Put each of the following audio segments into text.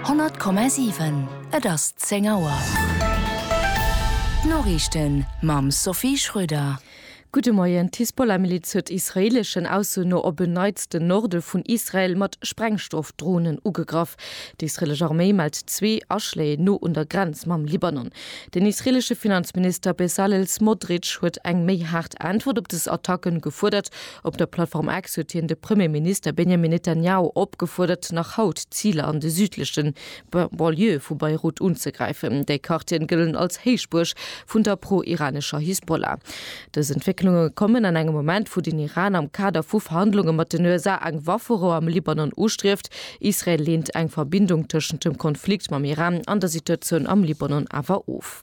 100,7 Et ass 10 Auer. D'Noriichten mam Sophie Schröder. Gudde Moien. D'Hisbollah-Miliz huet israeeleschen Ausso no op en Neits den Norde vun Israel mat Sprengstoff-Dronen ugegraff. D'israeelesch Arméi mellt zwee Aschléi no un der Grenz mam Libanon. Den israeelesche Finanzminister Bezalel Smotrich huet eng méi haart Äntwert op des Attacken gefuerdert. Op der Plattform X huet hien de Premier Minister Benjamin Netanjahu opgefuerdert, nach haut Ziler an de südleche Banlieue vu Beirut unzegräifen. Déi Quartieren gëllen als Héichbuerg vun der pro-iranescher Hisbollah. Dës Entwécklunge kommen an engem Moment, wou den Iran am Kader vu Verhandlunge mat den USA eng Wafferou am Libanon ustrieft. Israel leent eng Verbindung tëschent dem Konflikt mam Iran an der Situatioun am Libanon awer of.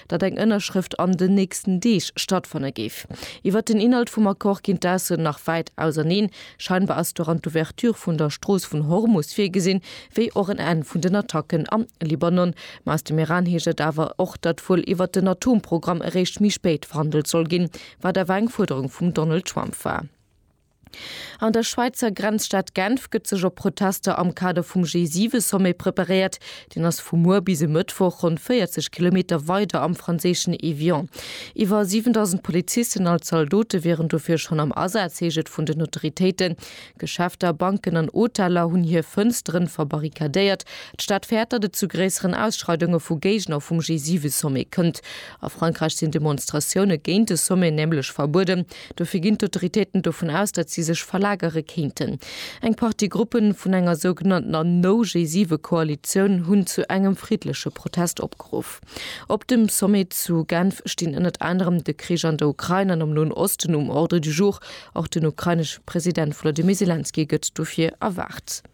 datt eng Ënnerschrëft an den nächsten Deeg stattfanne géif. Iwwert den Inhalt vum Accord ginn d'Aussoen nach wäit auserneen. Scheinbar ass doran d'Ouverture vun der Strooss vun Hormus virgesinn, wéi och en Enn vun den Attacken am Libanon. Ma aus dem Iran heescht et awer och, datt wuel iwwert den Atomprogramm eréischt méi spéit verhandelt soll ginn, wat awer eng Fuerderung vum Donald Trump war. An der Schwäizer Grenzstad Genf gëtt sech op Protester am Kader vum G7-Sommet preparéiert. Deen ass vu muer bis e Mëttwoch ronn 40 Kilometer weider am franséischen Évian. Iwwer 7.000 Polizisten als Zaldote wieren dofir schonn am Asaz, heescht et vun den Autoritéiten. Geschäfter, Banken an Hoteller hunn hir Fënstere verbarrikadéiert. D'Stad fäert, datt et zu gréisseren Ausschreidunge vu Géigner vum G7-Sommet kënnt. A Frankräich sinn Demonstratioune géint de Sommet nämlech verbueden. Dofir ginn d'Autoritéiten dovun aus, datt si sech verlagere kéinten. Eng Partie Gruppen vun enger sougenanntener No-G7-Koalitioun hunn zu engem friddleche Protest opgeruff. Op dem Sommet zu Genf stinn ënnert anerem de Krich an der Ukrain an am Noen Osten um Ordre du jour. Och den ukrainesche President Volodymyr Selenskyj gëtt dofir erwaart.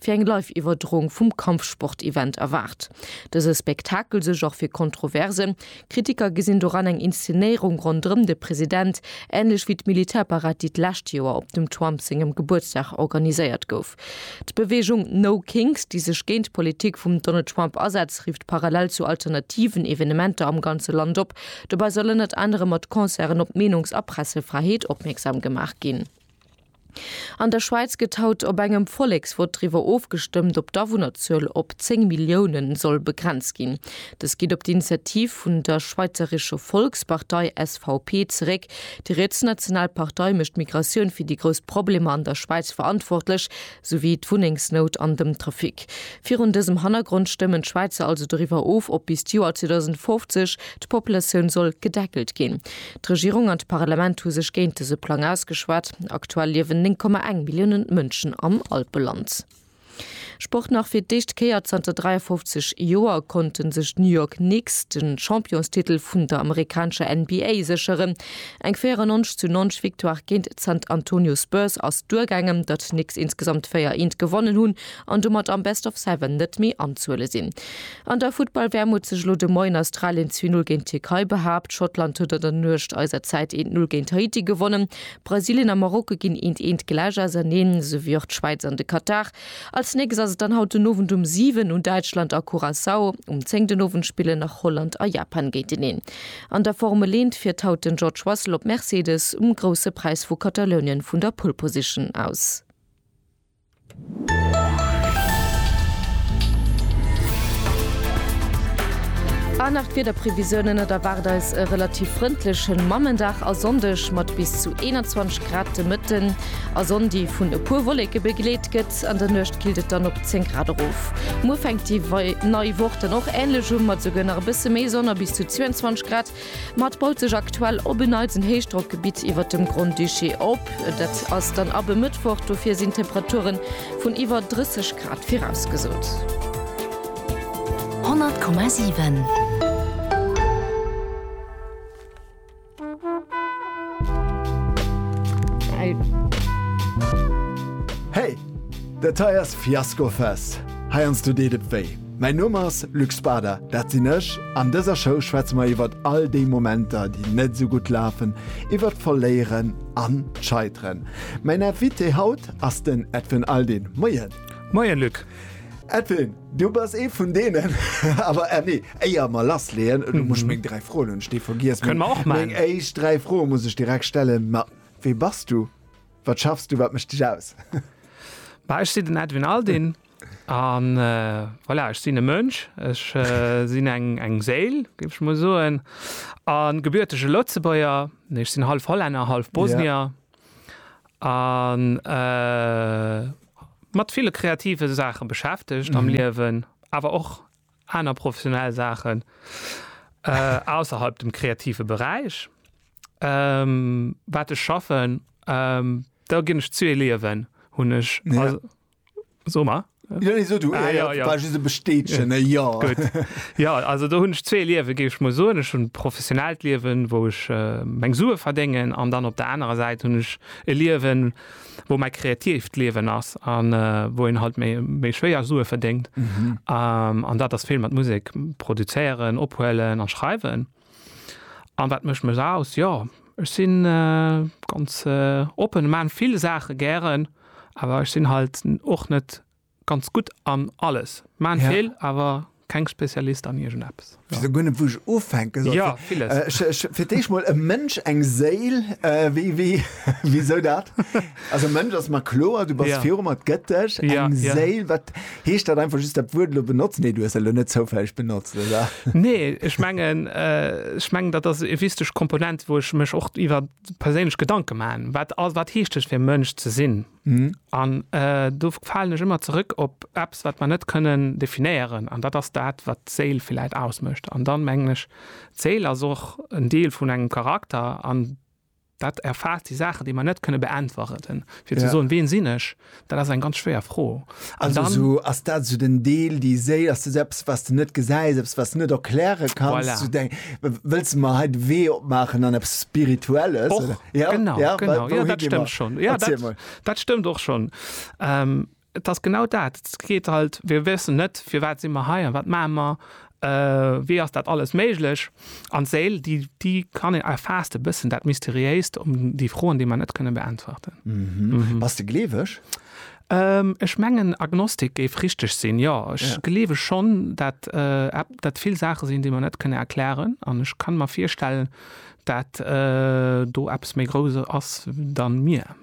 fir eng Live-Iwwerdroung vum Kampfsport-Event erwaart dëse Spektakel sech och fir Kontroversen. Kritiker gesinn doran eng Inszenéierung ronderëm de President, änlech wéi d'Militärparad, déi d'lescht Joer op dem Trump sengem Gebuertsdag organiséiert gouf. D'Beweegung No Kings, déi sech géint d'Politik vum Donald Trump asetzt, rifft parallel zu alternativen Evenementer am ganze Land op. Dobäi soll ënnert anerem mat Concerten op d'Meenungs a Pressefräiheet opmierksam gemaach ginn. An der Schwäiz gëtt haut op engem Volleksvott driwwer ofgestëmmt, ob d'Awunnerzuel op 10 Millioune soll begrenzt ginn. Dës geet op d'Initiativ vun der Schweizerische Volkspartei, SVP, zeréck. Déi rietsnational Partei mécht d'Migratioun fir déi grouss Problemer an der Schwäiz verantwortlech, sou wéi d'Wunnengsnout an dem Trafic. Virun dësem Hannergrond stëmmen d'Schwäizer also doriwwer of, ob bis d'Joer 2050 d'Populatioun soll gedeckelt ginn. D'Regierung an d'Parlament hu sech géint dëse Plang ausgeschwat. Aktuell liewen 9,1 Milliounen Mënschen am Alpeland. Sport nach, Fir d'éischt Kéier zanter 53 Joer konnte sech d'New York Knicks de Championstitel vun der amerikanescher NBA sécheren. Eng 94 zu 90 Victoire géint d'San Antonio Spurs ass duergaangen. Datt d'Knicks insgesamt 4 Eent gewonnen hunn an domat am Best of Seven net méi anzuhuele sinn, An der Futtball-WM huet sech elo de Moien Australien zwee Null géint d'Tierkei behaapt, Schottland huet an der Nuecht eiser Zäit eent Null géint Haiti gewonnen, Brasilien a Marokko ginn eent eent gläich auserneen, souwéi och d'Schwäiz an de Katar. Als nächst ass et dann haut den Owend um 7 un Däitschland a Curaçao, um 10 den Owend spillen nach Holland a Japan géinteneen. An der Formel 1 fiert haut den George Russell op Mercedes um Grousse Präis vu Katalounien vun der Pole Position aus. An nach d'Wiederprevisiounen, Et erwaart eis e relativ frëndlechen Mammendag a Sonndeg mat bis zu 21 Grad de Mëtten a Sonn, déi vun e puer Wolleke begleet gëtt. An der Nuecht killt et dann op 10 Grad erof. Muer fänkt déi nei Woch dann och änlech u mat esouguer nach e bësse méi Sonn a bis zu 22 Grad. Mat baut sech aktuell op en Neits en Héichdrockgebitt iwwert dem Grand-Duché op. Dat ass dann ab e Mëttwoch, dofir sinn Temperature vun iwwer 30 Grad virausgesot. 100,7. Hey! Dat hei ass Fiasco Fest, heiansdo deet et wéi. Mäin Numm ass Luc Spader, dat sinn ech. An dëser Show schwätze mer iwwert all déi Momenter, déi net esou gutt lafen, iwwert d'Verléieren an d'Scheiteren. Mäin Invité haut ass den Edwin Aldin. Moien! Moien, Luc! Edwin, du bass ee vun deenen, awer eh nee, éier mer lassleeën, du muss meng dräi Froen hunn ech déi vergiess. Kënne mer och maachen. Meng éischt dräi Froe muss ech direkt stellen. Ma wee bass du? Wat schaffs du? Wat mécht dech aus? Bah, ech sinn den Edwin Aldin. A voilà, ech sinn e Mënsch, ech sinn eng Séil, géif ech mol soen, a gebürtege Lëtzebuerger, nee, ech sinn hallef Hollänner, hallef Bosnier, a mat ville kreative Saache beschäftegt am Liewen, awer och aner professionell Saachen ausserhalb dem kreative Beräich, wat ech schaffen, do ginn ech zu, e Liewen hunn ech. So ma ja, nee, so, du, ah, ja, ja, ja. bestätchen ja. Ja. ja also da hunn ech zwee Liewe geif ech mo so ech hun professionellt Liewen, wou ech äh, meng Sue verdengen an dann op der anderen Seite hunn ech e Liewen wo mei kreativt Liewen ass an äh, wo en halt méi méi schwéier Sue verdingt mhm. ähm, an dat ass vill mat Musik produzéieren, ophuelen an schreiwen. An wat mécht mech aus? Jo, ech si ganz oppen, ech maachen vill Saache gären, awer ech sinn halt och net ganz gutt an alles. Ech maachen vill, awer keng Spezialist an iergend eppes. Ech weess guer net wou ech ufänke soll. Jo, villes. Fir d'éischt mol e Mënsch, eng Séil, wéi, wéi, wisou dat? Also Mënsch ass mer kloer, du bass ja. virum mat gëtt dech eng ja, ja. Séil, wat heescht dat einfach just dat Wuert lo benotzt? Nee, du hues lo net zoufälleg benotzt, oder? Nee, ech mengen, äh, ech mengen, dat ass e wichteg Komponent, wo ech mech och iwwer perséinlech Gedanke maachen. Wat, wat heescht ech fir Mënsch ze sinn? Mhm. An äh, do fallen ech ëmmer zurück op Apps, wat man net können definieren. An dat ass dat, wat Seel vielleicht ausmëcht. An dann menglech Zeel as och en Deel vun engem Charakter an Dat erfaasst déi Saachen, déi mer net kënne beäntwerten. Fir ze soen, ween sinn ech, dat ass eng ganz schwéier Fro. An dann. Also ass dat esou den Deel, déi Séil, ass dat esou eppes, wat s de net gesäis, eppes, wat s de net erkläre kanns? Voilà. Esou deng, wëlls de mer hei de Wee opmaachen an eppes Spirituelles? Och, oder? Genau, genau. Jo, dat stëmmt schonn. Jo, dat, dat stëmmt och schonn. Et ass genau dat. Et geet halt, mir wëssen net, firwat si mer hei a wat maache mer, wéi ass dat alles méiglech? An d'Séil, déi, déi kann een, erfaasst e bëssen dat Mysteriéist ëm déi Froen, déi mer net kënne beäntwerten. Bass de gleeweg? Ech mengen, Agnostik géif richteg sinn, jo. Ech gleewe schonn, dat dat vill Saache sinn, déi mer net kënne erklären. An ech kann mer virstellen, dat do eppes méi Grousses ass, wéi mir.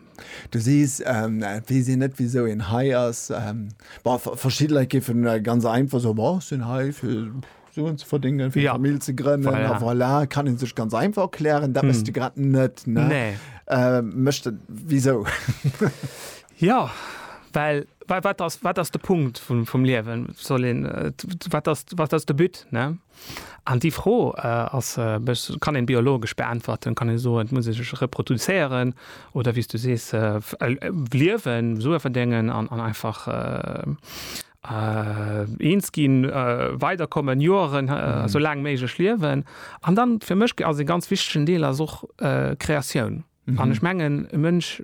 Du sees, et weess een net wisou een hei ass. Bon, verschidde Leit géife ganz einfach soen, bon, ech sinn hei fir Suen ze verdéngen, fir eng Famill ze grënnen a voilà. Kann ee sech ganz einfach erklären. Dat bass de grad net, ne? Nee. Wisou? Jo, well wat ass de Punkt vum Liewen? Wat ass de But, ne? An déi Fro ass, kann een biologesch beäntwerten, kann een soen, et muss ee sech reproduzéieren oder wéi s du sees liewen, Sue verdéngen an einfach eens ginn, weider kommen, Joeren esou laang méiglech liewen. An dann, fir mech ass e ganz wichtegen Deel ass och Kreatioun. Mhm. An ech mengen, e Mënsch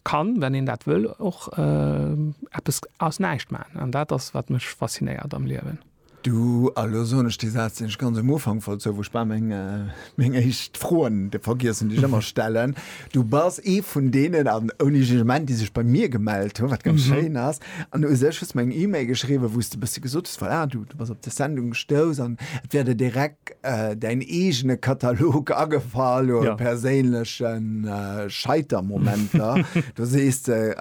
kann, wann een dat wëll, och äh, eppes aus näischt maachen. An dat ass, wat mech faszinéiert am Liewen. Du, a lo soen ech dee Saz, deen ech ganz um Ufank wollt soen, wou ech bal meng, äh, meng éischt Froen de vergiessen, déi ech ëmmer stellen. Du bass ee vun deenen, an ouni Jugement, déi sech bei mir gemellt hunn, wat ganz schéin ass, An u sech hues de mer eng Email geschriwwen, wou s de e bësse gesot hues, voilà, du bass op dës Sendung gestouss an et wär der direkt däin eegene Katalog agefall u perséinleche Scheitermomenter. Do sees de,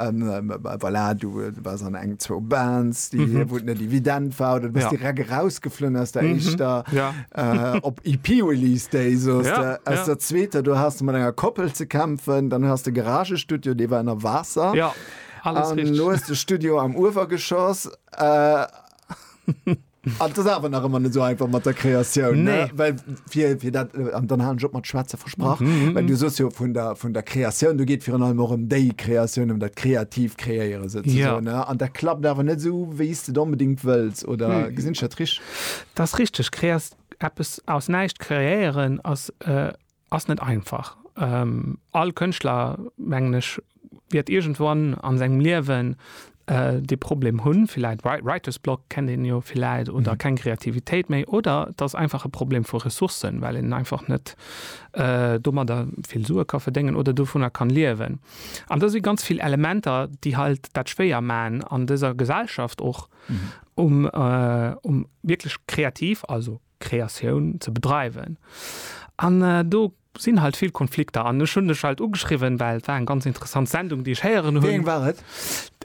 voilà, du bass an eng, zwou Bands, wou et net evident war oder du bass direkt erausgeflunn aus der éischter op EP-Release Day, soss de, aus der zweeter, do has de mat enger Koppel ze kämpfen, dann has de Garagestudio, dee war ënner Waasser. Alles an richtig. Lo ass de Studio am Uewergeschoss. Äh, an das awer nach ëmmer net so einfach mat der Kreatioun. Nee. Ne? Well fir, fir dat, äh, an dann halen Job mat Schwätze versprach. Mm -hmm. Well du sos jo vun der, vun der Kreatioun, du geet virun allem och ëm déi Kreatioun, ëm dat kreativ Kreéiere se ze ja. ne? An dat klappt awer net sou, wéi s de onbedingt wëlls oder mm. gesinn dat rich? Das richtig. Kreas eppes aus näischt kreéieren ass. Äh, Ass net einfach. All Kënschtler, mengen ech, wäert iergendwann a sengem Liewen dee Problem hunn, villäit Writer's Block kennt een jo villäit oder keng Kreativitéit méi. Oder et ass einfach e Problem vu Ressourcen, well een einfach net domadder vill Sue ka verdéngen oder dovunner kann liewen. An da si ganz vill Elementer, déi halt dat schwéier maachen an dëser Gesellschaft och, um wierklech kreativ, also. Kreatioun ze bedreiwen. An do sinn halt vill Konflikter. An ech hunn dech halt ugeschriwwen, well et war eng ganz interessant Sendung, déi ech héieren hunn. Wéi eng war et?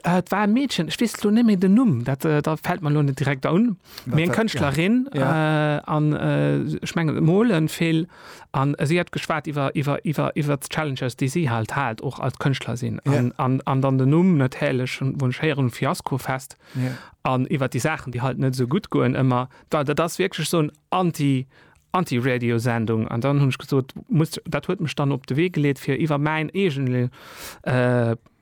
Et war e Meedchen, ech weess elo net méi den Numm, dat fält mer elo net direkt un, mee eng Kënschtlerin. An ech mengen, se molen vill an si hat geschwat iwwer d'Challenges, déi si halt hat, och als Kënschtlerin. An dann den Numm natierlech, wou ech héieren, Fiaskofest an iwwer déi Saachen, déi halt net esou gutt goen ëmmer. Well dat ass wierklech esou en Anti, Anti-Radio-Sendung. An dann hunn ech gesot, muss, dat huet mech dann op de Wee geleet, fir iwwer mäin eegene,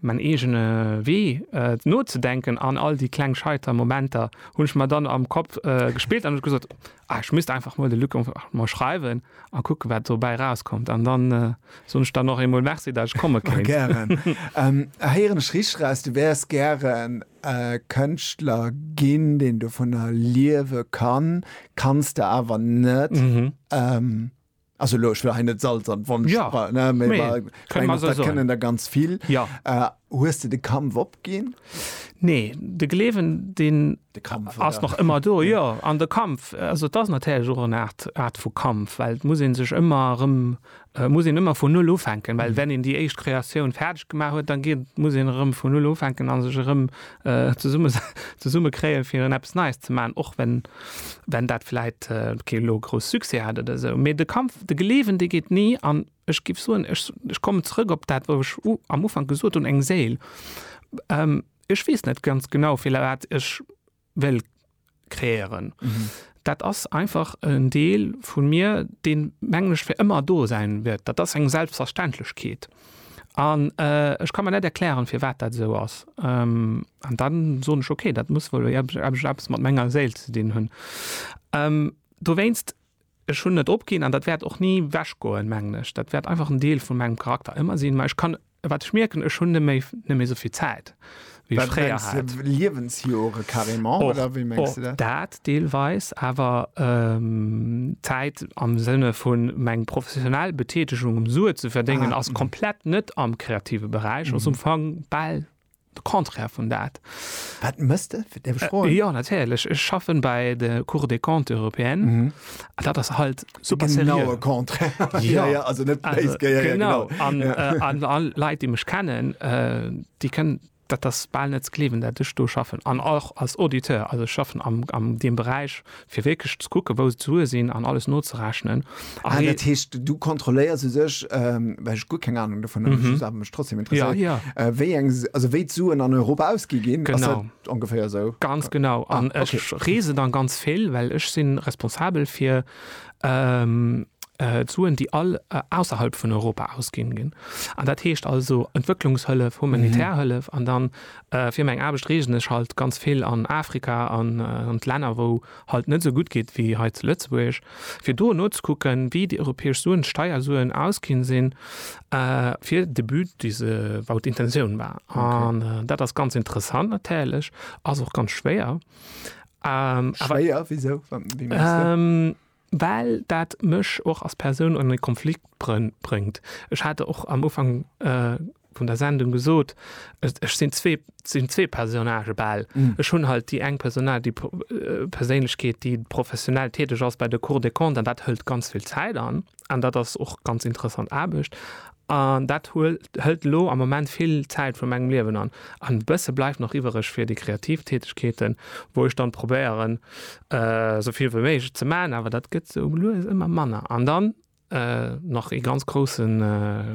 mäin eegene Wee nozedenken. An all déi kleng scheiter Momenter hunn ech mer dann am Kapp gespillt an ech gesot, ah, ech misst einfach mol de Luc einfach mol schreiwen a kucken, wat dobäi erauskommt. An dann soen ech der nach eemol Merci, datt ech komme kéint. Gären. Héieren ech richteg eraus, du wäers gären Kënschtler ginn, deen dovunner liewe kann, kanns de awer net. Also elo, ech wëll hei net Salz an d'Wonn streuen, ne, mee ech mengen, dat kënnen der ganz vill. Hues de de Kampf opginn? Nee, de Gleewen, deen ass nach ëmmer do, jo. An de Kampf, also et ass natierlech och eng Aart vu Kampf, well et muss ee sech ëmmer erëm Et muss een ëmmer vun Null ufänken, well wenn een déi éischt Kreatioun fäerdeg gemaach huet, da geet, muss een erëm vun Null ufänken a sech erëm zesumme, zesumme kréien, fir erëm eppes Neies ze maachen, och wenn, wenn dat vläicht kee elo grouss Succès hat oder esou. Mee de Kampf, de geleewen, dee geet ni. An ech géif soen, ech, ech kommen zrëck op dat, wou ech am Ufank gesot hunn, eng Séil. Ech weess net ganz genau, firwat ech well kreéieren. Mhm. Dat ass einfach en Deel vun mir, deen, mengen ech, fir ëmmer do säin wäert. Dat ass eng Selbstverständlechkeet. An äh, ech ka mer net erklären, firwat dat esou ass. Ähm, an dann soen ech, okay, dat muss wuel epp- epp- eppes mat menger Séil ze dinn hunn. Ähm, dowéinst, ech hunn net opginn an dat wäert och ni wechgoen, mengen ech. Dat wäert einfach en Deel vun mengem Charakter ëmmer sinn. Mä ech kann Wat ech mierken, ech hunn net méi, net méi souvill Zäit, wéi ech fréier hat. Wat mengs de, Liewensjore carrément, oder wéi mengs de dat? Och dat deelweis, awer Zäit am Sënne vu meng professionell Betätegung, um Sue ze verdéngen, ass komplett net am kreative Beräich, ass um Fong bal De Contraire vun dat. Wat mëss de? Däerf ech froen? Jo, natierlech. Ech schaffen bei de Cour des Comptes européennes. Mhm. An dat ass halt super seriö. Den genaue Contraire. Ja, ja, also net béis geier. Ja, genau. An all Leit, déi mech kennen, déi kënnen, dat ass bal net ze gleewen, dat ech do schaffen. An och als Auditeur, also ech schaffen am deem Beräich, Fir wierklech ze kucken, wou d'Sue sinn an alles nozerechnen. Ah, dat heescht, du kontrolléiers u sech, well ech guer keng Anung dovun hunn, just awer mech trotzdem interesséiert, ja, ja. wéi eng, also wéi d'Suen an Europa ausgi ginn. Genau. Ass dat ongeféier esou? Ganz genau. Ah, okay. An ech reese dann ganz vill, well ech si responsabel fir d'Suen, déi all ausserhalb vun Europa ausginn ginn. An dat heescht also Entwëcklungshëllef, humanitär Hëllef an dann Fir meng Aarbecht reesen ech halt ganz vill an Afrika an an d'Länner wou halt net esou gutt geet wéi hei zu Lëtzebuerg fir do nozekucken wéi déi europäesch Suen, Steiersuen ausginn sinn fir de But dee se wou d'Intention war. An dat ass ganz interessant natierlech, ass och ganz schwéier. Schwéier wisou? Wéi mengst de? well dat mech och als Persoun an e Konflikt bréngt. Ech hat och am Ufank vun der Sendung gesot, ech sinn zwee, sinn zwee Personnagë bal. Ech hunn halt déi eng Personnage, déi Perséinlechkeet, déi professionell täteg ass bei der Cour des Comptes an dat hëlt ganz vill Zäit an, an dat ass och ganz interessant Aarbecht. An dat hëlt elo am Moment vill Zäit vu mengem Liewen an. An e bësse bleift nach iwwereg fir déi kreativ Tätegkeeten, wou ech dann probéieren, esou vill wéi méiglech ze maachen, awer dat gëtt esou lues ëmmer manner. An dann nach ee ganz groussen,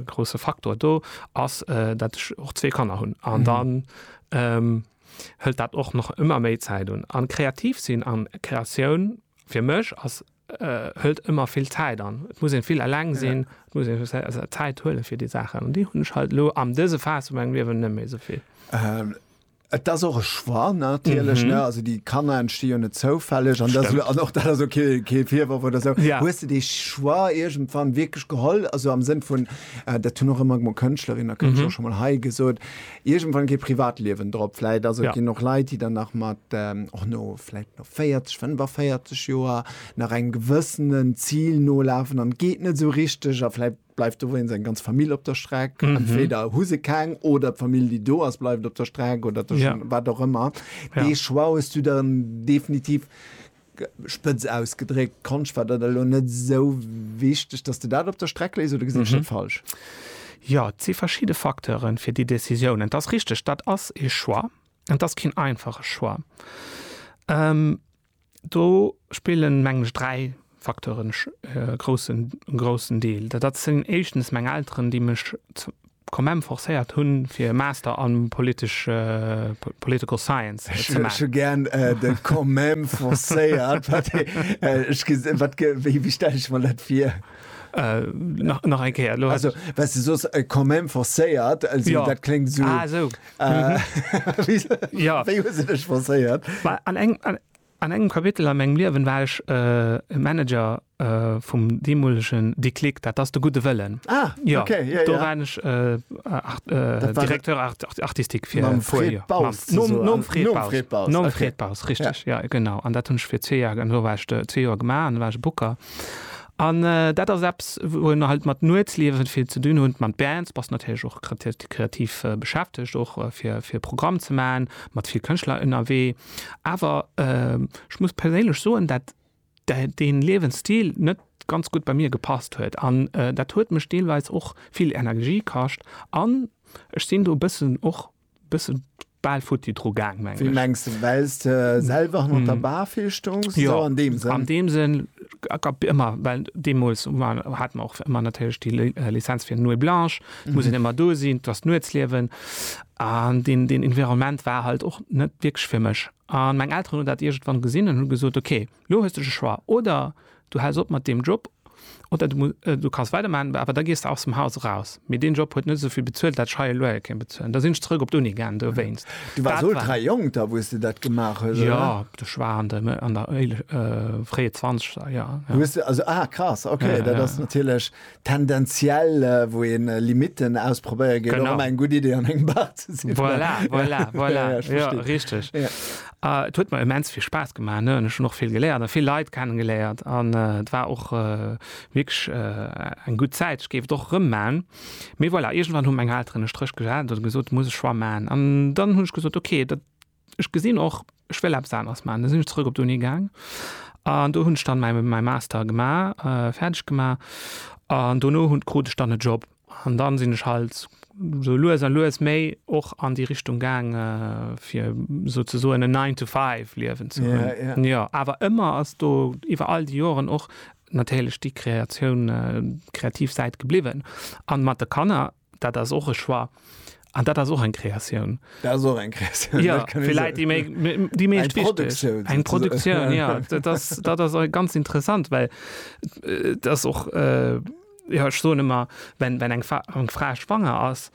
grousse Faktor do ass, dat ech och zwee Kanner hunn. An dann hëlt dat och nach ëmmer méi Zäit un. An kreativ sinn an Kreatioun fir mech ass hëlt ëmmer vill Zäit an. Et muss een vill eleng sinn, et muss een sech Zäit huelen fir déi Saachen. An déi hunn ech halt elo am dëse Phase vu mengem Liewen net méi esou vill. Et ass och e Choix natierlech, ne? Also déi Kanner entsti jo net zoufälleg an dat, an och dat ass ok, kee Virworf oder esou. Hues de dee Choix iergendwann wierklech geholl, also am Sënn vun, dat hunn och ëmmer mol Kënschtlerin a Kënschtler och scho mol hei gesot, Iergendwann kee Privatliewen drop. Vläit ass et, ginn och Leit, déi dann nach mat, och no vläit no 40, 45 Joer nach engem gewëssenen Zil nolafen an et geet net esou richteg a vläit bleift do wéinst eng ganz Famill op der Streck. Entweder hu se keng oder d'Famill, déi do ass, bleift op der Streck oder wat och ëmmer. Dee Choix hues du dann definitiv. Spëtz ausgedréckt, Konscht war dat elo net esou wichteg, dass de dat op der Streck léis, oder gesinn ech dat falsch? Jo, et si verschidde Facteuren fir déi Décisiounen. Et ass richteg, dat ass ee Choix, an et ass keen einfache Choix. Do spillen, mengen ech, dräi Facteuren e groussen, groussen Deel. Dat sinn éischtens meng Elteren, déi mech, Commem forcéiert hun fir e Master an politesch Political Science ze maachen. Ech hu gären de Commem forcéiert. Wéi stelle ech mer dat vir? Nach eng Kéier. Also well se soss Commem forcéiert, also dat kléngt esou. Ah esou. Wéi hu se dech forcéiert? An engem. An engem Kapitel a mengem Liewen war ech e Manager vum deemolegen Déclic, dat ass de Gudde Wëllen. Ah, okay, jo, jo. Do waren ech Directeur artistique fir e puer Joer. Mam Fred Baus zesummen. Nom Fred Baus. Nom Fred Baus. Nom Fred Baus, richteg, jo, genau. An dat hunn ech fir zwee Joer, do war ech zwee Joer gemaach an do war ech e Booker. An dat ass eppes, wou een halt mat Nuetsliewe vill ze dinn hutt, mat Bands, bass natierlech och kreativ beschäftegt, och fir e Programm ze maachen, mat vill Kënschtler ënnerwee. Awer ech muss perséinlech soen, dat dee Liewensstil net ganz gutt bei mir gepasst huet an dat huet mech deelweis och vill Energie kascht an ech sinn do bëssen och bësse bal futti dru gaang mengen ech. Wéi mengs de? Wells de selwer hanner der Bar vill stoungs? Jo, an deem Sënn? An deem Sënn, ëmmer, well deemools hate mer och ëmmer natierlech déi Lizenz fir Nuit blanche, et muss een ëmmer do sinn, et ass d'Nuetsliewen. An deen, deen Environnement war halt och net wierklech fir mech. An meng Elteren hunn dat iergendwann gesinn an hu gesot, ok, lo hues de de Choix, oder du häls op mat deem Job, oder du, du kanns weidermaachen, awer da gees de aus dem Haus eraus. Mee deen Job huet net esou vill bezuelt, dat ech hei e Loyer kéint bezuelen. Da sinn ech zeréck op d'Uni gaangen dowéinst. Du waars ultra jonk da, wou s de dat gemaach hues, oder? Jo, ech war an de, an der, fréie Zwanzeger, jo. Hues de, also, ah, krass, ok, dat ass natierlech tendenziell wou een Limiten ausprobéier geet och ëmmer eng gutt Idee an engem Bar ze sinn. Voilà, voilà, voilà. Ja, ja, ja richteg. Ja. Uh, et huet mer immens vill Spaass gemaach ne? Ech hun och vill geléiert a vill Leit kennengeléiert an et uh, war och uh, wirklich uh, eng gutt Zäit. Ech géif och rëm maan. Mee voilà, irgendwann hunn meng Elteren e Stréch gesat oder gesot muss ech schwa maan an dann hunn ech gesot okay, dat Ech gesinn och, ech wëll eppes aneres maachen. Da sinn ech zrëck op d'Uni gaang an do hunn ech dann mäi, mäi Master gemaach, fäerdeg gemaach an dono hunn, krut ech dann e Job. An dann sinn ech halt sou lues a lues méi och an déi Richtung gaang, fir souzesoen en Nine to Five Liewen ze hunn. Jo, awer ëmmer ass do iwwer all déi Joren och natierlech déi Kreatioun, déi kreativ Säit gebliwwen. An mat de Kanner. dat ass och e Choix. An dat ass och eng Kreatioun. Dat ass och eng Kreatioun. Ja, vielleicht die, méi, die méi Eng Produktioun. Eng Produktioun, ja. dat ass, dat ass ganz interessant, well äh, dat ass och. Äh, ja, ech soen ëmmer, wenn, wenn eng, Fa eng Fra schwanger ass,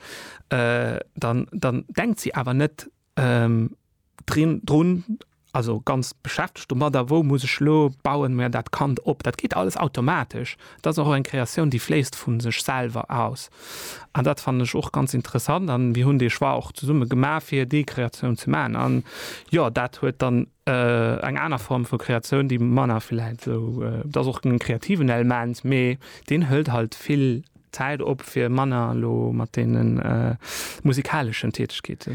äh, dann, dann denkt si awer net, Ähm, drin, drun, also ganz beschäftegt domadder, wou muss ech lo, bauen mer dat Kand op. Dat geet alles automatesch. Dat ass och eng Kreatioun, déi fléisst vu sech selwer aus. An dat fannen ech och ganz interessant a mir hunn dee Choix och zesumme gemaach, fir déi Kreatioun ze maachen. An jo, dat huet dann eng aner Form vu Kreatioun, déi manner vläicht esou, dat ass och en kreativen Element, mee deen hëlt halt vill Zäit op fir manner elo mat deene musikaleschen Tätegkeete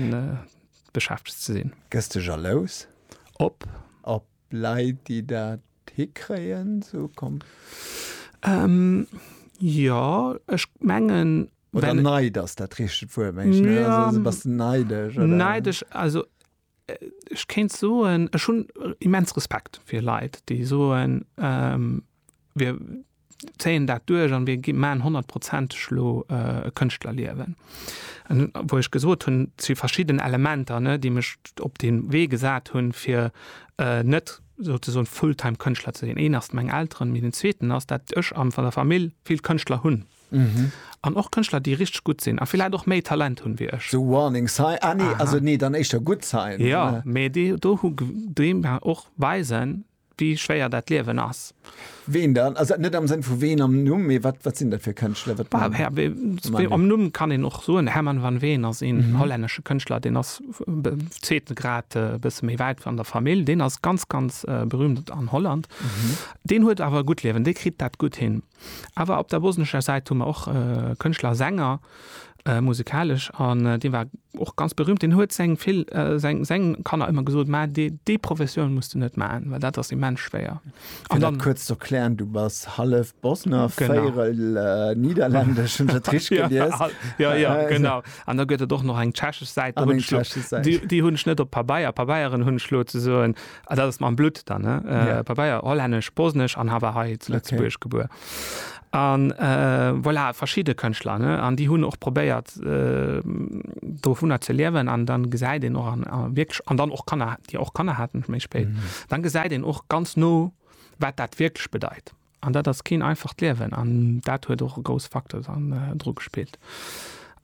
beschäftegt ze sinn. Gëss de jalous? Op? Op Leit, déi dat hikréien? Sou komm. Jo, ech mengen. Oder Neid ass dat richtegt Wuert, mengen ech, ne? Also bass de neidesch, oder? Neidesch, also Ech kéint soen, ech hunn immens Respekt fir Leit, déi soen, mir zéien dat duerch a mir maachen honnertprozenteg elo e Kënschtlerliewen. Wou ech gesot hunn, et si verschidden Elementer, déi mech op dee Wee gesat hunn, fir net souzesoen full-time Kënschtler ze sinn. Een ass meng Elteren, mee den zweeten ass, dat ech an der Famill vill Kënschtler hunn. Mhm. An och Kënschtler, déi richteg gutt sinn a villäit och méi Talent hunn wéi ech. So warning sign, ah nee, also nee, dann éischter good sign. Jo, mee déi do hu déi mer och weisen, wéi schwéier dat Liewen ass. Ween dann? Also net am Sënn vu ween am Numm, mee wat, wat sinn dat fir Kënschtler? Wat Bah, Herr Wee, wee am Numm kann een och soen, Herman van Veen ass een hollännesche Kënschtler, deen ass be zweeten Grad e bësse méi wäit an der Famill. Deen ass ganz, ganz berühmt an Holland. Deen huet awer e gutt Liewen, dee kritt dat gutt hin. Awer op der bosnescher Säit hu mer och Kënschtler a Sänger, musikalesch, an dee war och ganz berüümt. Deen huet seng vill, seng, seng Kanner ëmmer gesot, mä dee, déi Professioun muss de net maachen, well dat ass immens schwéier. Fir dat kuerz ze erklären, du bass hallef Bosner, véierel Nidderlännesch, hunn ech dat richteg gelies? Genau, jo, jo, genau. An da gëtt et och nach eng tschechesch Säit, déi hunn ech net op Pabeier, Pabeieren hunn ech elo ze soen, Ah, dat ass mam Blutt dann, ne? Äh, yeah. Pabeier, hollännesch, bosnesch an hawer hei zu Lëtzebuerg okay. gebuer. An äh, voilà, verschiide Kënchtler, ne? An déi hunn och probéiert äh, do vunner ze liewen an dann gesäit den och an, an wirklich, an dann och Kanner, Dir och Kanner hatten méi spéit. Mm. Dann gesäit den och ganz no, wat dat wirklich bedeit. An dat ass keen einfacht Liewen an dat huet och e grouss Facteur dann dru gespillt.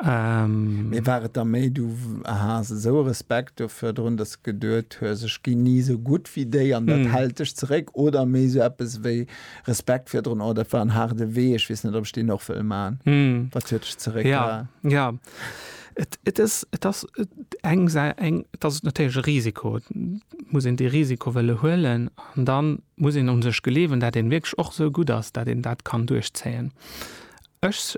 Mee war et da méi, du has esou e Respekt do virdrun, dass de geduet hues, ech ginn ni esou gutt wéi déi an dat hält dech zeréck? Oder méi esou eppes wéi Respekt virdrun, oh dat war en haarde Wee, ech weess net, ob ech deen och wëll maachen? Wat huet dech zeréckgehalen? Jo, et ass natierlech e Risiko. Et muss een dee Risiko wëlle huelen an dann, muss een un sech gleewen, dat een wierklech och esou gutt ass, dat een dat kann duerchzéien. Ech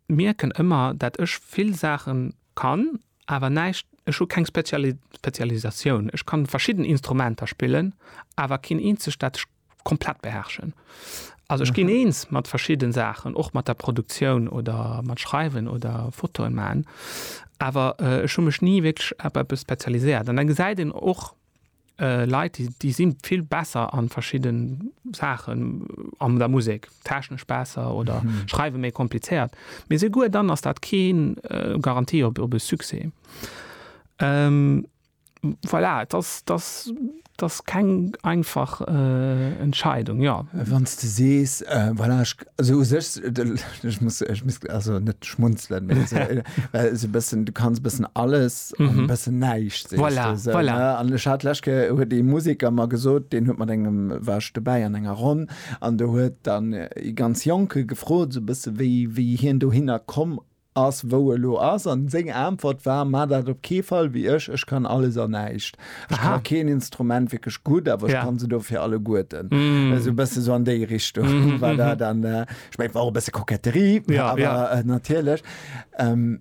mierken ëmmer, dat ech vill Saachen kann, awer näischt, ech hu keng Spezialisatioun. Ech kann verschidden Instrumenter spillen, awer keen eenzegt, dat ech komplett beherrschen. Also ech ginn eens mat verschidden Saachen, och mat der Produktioun oder mat Schreiwen oder Fotoen man, awer ech hu mech ni wierklech op eppes spezialiséiert. An da gesäit een och. Leit déi si vill besser an verschidde Saachen an der Musek, technesch besser oder schreiwe méi komplizéiert, mee souguer dann ass dat kee Garantie op e Succès. Voilà, et ass, et ass keng einfach Entscheidung, jo. Wann s de sees, voilà, ech Also u sech, ech muss, ech muss also net schmunzelen, mä esou, well esou e bëssen, du kanns e bëssen alles an e Mhm. bëssen näischt, sees Voilà, de esou, voilà. ne? An ech hat d'lescht Kéier, huet ee Museker mer gesot, deen huet mat engem, war ech dobäi an enger Ronn, an do huet dann ee ganz Jonke gefrot, esou e bësse wéi, wéi hien dohinner komm Ass wou elo ass, an seng Aentwert war, Maach dat op kee Fall wéi ech, ech kann alles an näischt. Ech kann Aha. keen Instrument wierklech gutt, awer ech Ja. kann se dofir alleguerten. Esou e bësse sou an déi Richtung war dat. An ech mengen, et war och e bësse Koketterie, Ja, awer ja. natierlech. Em,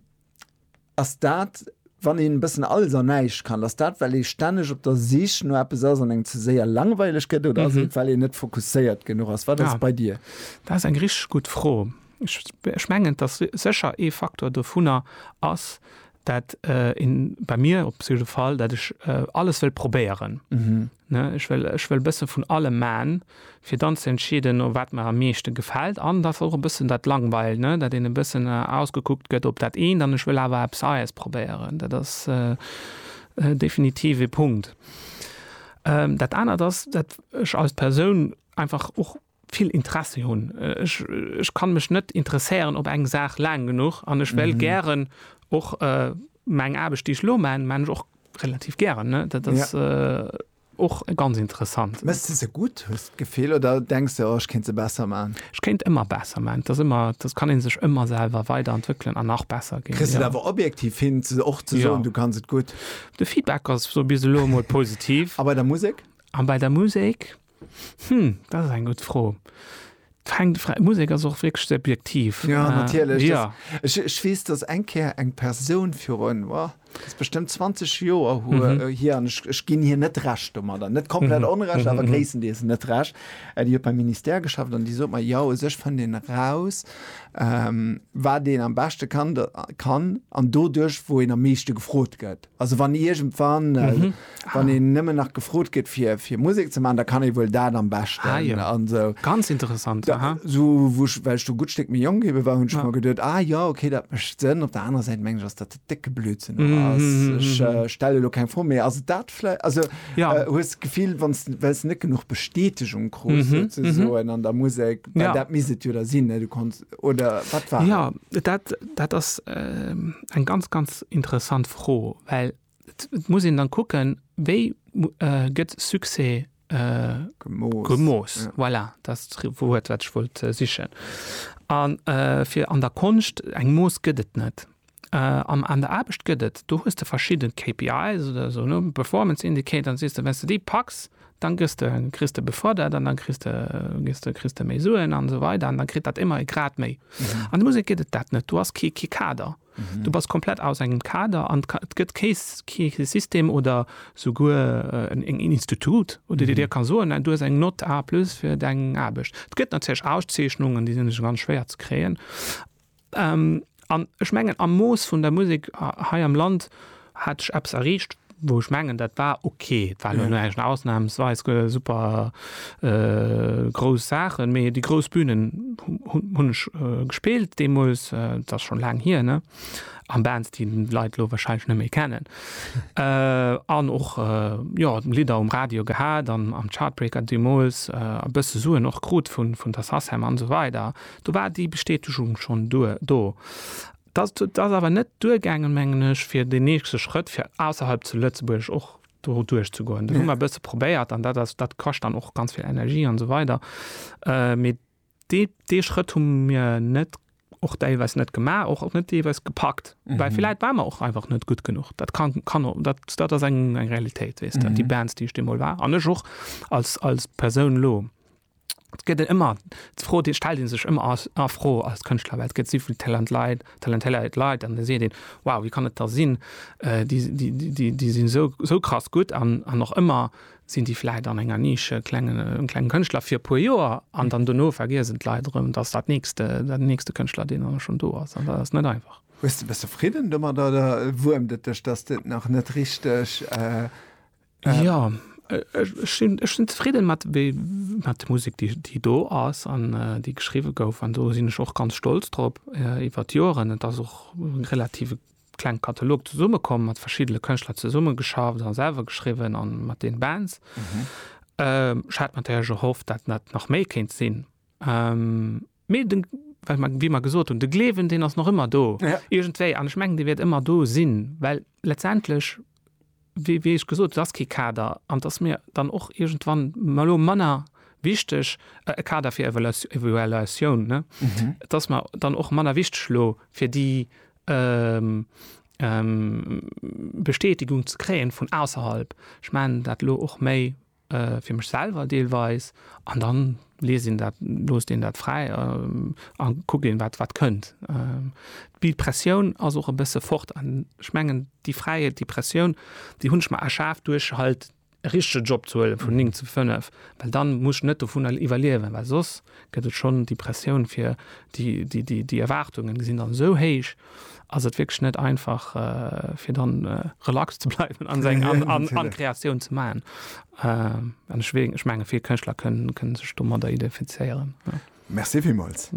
Ass dat, wann een e bëssen alles an näischt kann, ass dat well ee stänneg op der Sich no eppes ass an engem ze séier langweileg gëtt, oder ass et well een net fokusséiert genuch ass? Wat ass Ah. et bei dir? Dat ass eng richteg gutt Fro. Ech mengen, dass sécher ee Faktor dovunner ass, dat een, bei mir op jidde Fall, dat ech alles wëll probéieren. Ech wëll, ech wëll e bësse vun allem man, fir dann ze entscheeden, wat mer am meeschte gefält. An dass och e bëssen dat langweilt, dat een e bëssen ausgekuckt gëtt op dat eent an ech wëll awer eppes Neies probéieren. Dat ass definitiv ee Punkt. Dat anert ass, dat ech als Persoun einfach och, vill Interessi hunn. Ech, ech kann mech net interesséieren op eng Saach laang genuch an ech wéll gären och meng Aarbecht, déi ech elo man, man ech och relativ gären, ne? Dat ass och ganz interessant. Méchs de se gutt, hues de d'Gefill, oder denks de, oh ech kéint se besser man? Ech kéint ëmmer besser man. Et ass ëmmer, et kann ee sech ëmmer selwer weiderentwéckelen an nach besser ginn. Kriss de et awer objektiv hin och ze soen, du kanns et gutt? De Feedback ass bis elo emol positiv. A bei der Musek? A bei der Musek? Hm, dat ass eng gutt Fro. D'hänkt vra Musek ass och wierklech subjektiv. Ja, Äh, natierlech. Ja. Das, ech, ech weess, dass eng Kéier eng Persoun virun, wa, ass bestëmmt 20 Joer hu, Mhm. äh, hier, an ech, ech ginn hir net Recht domadder, net komplett Mhm. Onrecht, Mhm, awer mhm. gréisstendeels net Recht, äh, déi huet beim Ministère geschafft an déi sot mer, jo, u sech fënnt een eraus, ähm, wat een am beschte kann, da, kann, an doduerch, wou een am meeschte gefrot gëtt. Also wann iergendwann, wann een nëmmen nach gefrot gëtt fir, fir Musek ze maachen, da kann ee wuel dat am beschten. Ah jo. An esou. Ganz interessant, Da, aha. esou wou ech, well ech do e gutt Stéck méi jonk ebe war, hunn ech mer geduet, ah jo, okay, dat mécht Sënn. Op der anerer Säit mengen ech, ass dat e décke Blödsinn och ass. Ech stelle elo keng Fro, mee ass et dat vläi-, also Ja. hues de d'Gefill, wann s, well s net genuch Bestätegung krus souzesoen an der Musek, well Ja. dat misst et jo da sinn, ne, du konns, oder wat war? Ja dat, dat ass äh, eng ganz ganz interessant Fro, well et muss een dann kucken, wéi äh, gëtt Succès äh, gemoos, gemoos. Ja. Voilà, das Wuert wat ich wollt äh, sichen. An äh, fir an der Konscht eng Moos gëtt et net. An an der Aarbecht gëtt et, do hues de verschidde KPIs oder esou, ne, Performance Indicator, an sees de, wenn's de déi packs, dann gëss de, kriss de befërdert an dann kriss de, gëss de, kriss de méi Suen an esou weider an dann kritt dat ëmmer e Grad méi. An der Musek gëtt et dat net. Du has kee, kee Kader. Du bass komplett aus engem Kader an et gëtt kee, kee System oder souguer en, en Institut, wou de dir ka soen, du hues eng Nott A plus fir deng Aarbecht. Et gëtt natierlech Auszeechnungen, déi sinn ganz schwéier ze kréien. An ech mengen am Mooss vun der Musek hei am Land hat ech eppes erreecht, wou ech mengen, dat war ok. Et war elo näischt ausnahmsweis super grouss Saachen, mee déi grouss Bünen hunn ech gespillt deemools, et ass schonn laang hier, ne? An Bands, déi d'Leit elo warscheinlech net méi kennen. An och, jo, Lidder um Radio gehat an am Chartbreaker deemools e bësse Suen och krut vun der Sacem an esou weider. Do war déi Bestätegung schonn duer do. Dass et ass awer net duergaangen, mengen ech, fir deen nächste Schrëtt, fir ausserhalb zu Lëtzebuerg och do duerchzegoen. Dat hu mer e bësse probéiert an dat ass, dat kascht dann och ganz vill Energie an esou weider. Mee dee, dee Schrëtt hu mir net, och deelweis net gemaach, och net deelweis gepackt, well villäit ware mer och einfach net gutt genuch. Dat ka, kann och, dat, dat ass eng, eng Realitéit, weess de, déi Bands, déi ech deemol war an ech och als, als Persoun elo. gëtt en ëmmer d'Fro, déi stellt ee sech ëmmer a Fro als Kënschtler, well et gëtt souvill Talentleit, talentéiert Leit an da seet een, wow, wéi kann et da sinn, déi, déi, déi, déi sinn esou, esou krass gutt an, an och ëmmer sinn déi vläicht an enger Nische, klengen, klenge Kënschtler fir e puer Joer an dann dono vergiesen d'Leit erëm, dass dat nächst, den nächste Kënschtler, deen dann schonn do ass an dat ass net einfach. Hues de, bass de fridden domat oder wuermt et dech, dass de et nach net richteg. Ja, ech sinn zefridden mat der Musek, déi do ass an déi geschriwwe gouf. An do sinn ech och ganz stolz drop iwwer d'Joren. Et ass och e relativ klenge Katalog zesummekomm, mat verschiddene Kënschtler zesummegeschafft a selwer geschriwwen an mat den Bands. Ech hat natierlech erhofft, datt dat nach méi kéint sinn. Mee de, well mer, wéi mer gesot hunn, de Gleewen, deen ass nach ëmmer do, iergendwéi. An ech mengen, dee wäert ëmmer do sinn, well letztendlech, wéi, wéi ech gesot, et ass kee Kader an et ass mir dann och iergendwann ma elo manner wichteg, e Kader fir Evaluatio, Evaluatioun, ne? Et ass mer dann och manner wichteg elo, fir déi Bestätigung ze kréien vun ausserhalb. Ech mengen dat elo och méi. fir mech selwer deelweis an dann liest een dat, loosst een dat fräi a kuckt een, wat, wat kënnt. Déi Pressioun ass och e bësse fort an ech mengen, déi Fräiheet, déi Pressioun, déi hunn ech mer erschaf duerch halt e richtege Job ze huelen, vun néng zu fënnef, well dann muss ech net dovunner iwwerliewen, well soss gëtt et schonn déi Pressioun fir déi, déi, déi Erwaartungen sinn dann esou héich, ass et wierklech net einfach fir dann relax ze bleiwen an seng an Kreatioun ze maachen. An ech wéng ech menge vill Kënschtler kënnen kënnen sech domadder identifizéieren. Merci villmools.